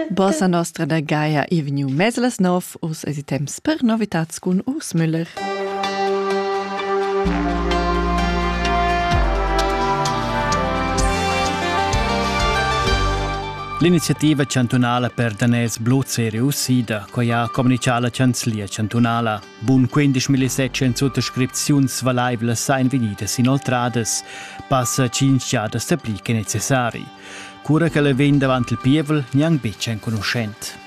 Bossa nostra da Gaia e vegniu mez las nov, us es i temps per novitats cun Urs Müller. L'iniziativa chantunala per daners bluzeri usida, coi ha communichà la chanzlia chantunala. Bun 15.700 suttascripziuns valaivlas ein vegnidas inoltradas. Passa 5 giadas dapli che necessari. Cura ch'ella vegn davant il pievel, gnanc betg enconuschent.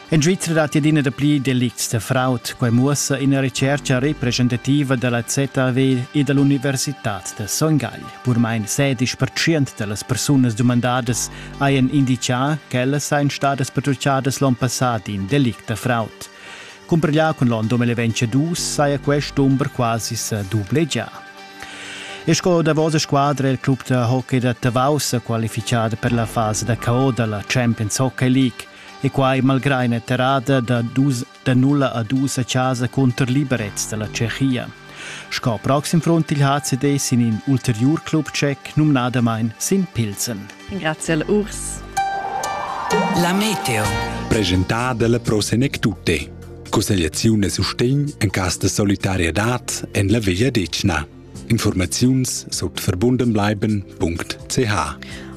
En Svizra datti adina dapli delicts da fraud. Quai muossa ina retschertga representativa da la ZAW e da l'Universitad da Son Gagl. Purmain sedisch pertschient da las persunas dumandadas hajan inditgà ch'ellas sajan stadas pertutgadas l'onn passà d'in delict da fraud. Cumparglià cun l'onn 2022 saja quest dumber quasi sa dublegià. E sco davos squadra il club da hockey da Tavau sa qualifichada per la fasa da KO da la Champions Hockey League e quai malgrà ina terrada da, dus, da 0 a 2 a casa contro Liberec da la Tschechia. Sco proxim front il HCD sin in ulterior club tschec numnadamain sin Pilsen. Grazie al Urs. La meteo. Presentada la prosenek tutte. Cussegliaziun e sustegn en cas de solidarietad en la vegliadetgna. Informaziuns sut verbundenbleiben.ch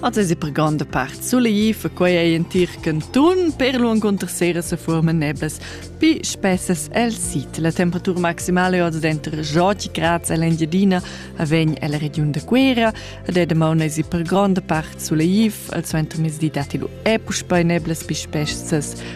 Also ist eine grande Part Sulaiv, quei ei in tir canton, per lungo unter sera se forma nebes, pi spessas el sit. La temperatura maximale oz denter Joti Graz e l'Engiadina avegn el region de Quera, ed è demont es per grande part Sulaiv, al suenter mesdi dati lu e puspei neblas pi spessas